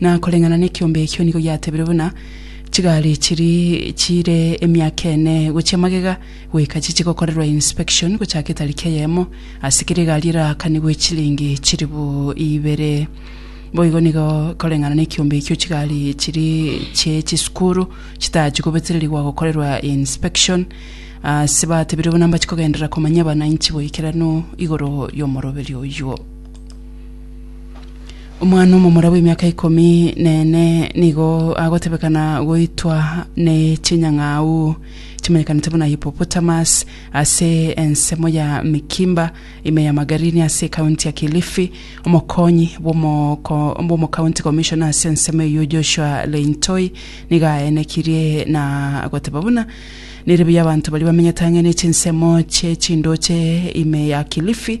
Na koreng'ana nekiombe ekio nigo giatebirwe buna chigari chiri chire emiaka ene gochia magega goika chiche gokorerwa inspection gochake tariki eyemo ase kera egari erakanigwe chilingi chiribu ibere. Boigo nigo koreng'ana nekiombe ekio chigari chiri chie chisukuru chitachie gobetererigwa gokorerwa inspection ase batebirwe buna mbachia kogenderera komanya abananchi boikeranu igoro yomoroberio oyuo. Omwana omomura bw'emiaka ikomi nene nigo agotebekana goitwa ne chinyang'au chimanyekanete buna hippopotamus ase ensemo ya Mikimba ime ya Magarini ase ekaunti ya Kilifi. Omokonyi bw'omoko- bw'omocounty commissioner ase ensemo eyio Joshua Leintoi nigo aenekirie na goteba buna nere buya abanto baria bamenyete ang'e ne chinsemo chie chindoche ime ya Kilifi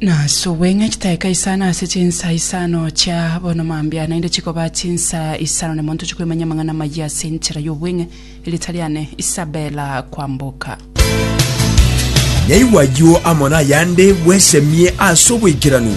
Nase obweng'e chitaika isano ase chinsa isano chia bono mambia naende chikoba chinsa isano nemo ntoche kwemanya amang'ana amayia ase enchera y'obweng'e erita riane Isabella Kwamboka. Naigwa ayio amo nayande bwesemie ase oboikeranu.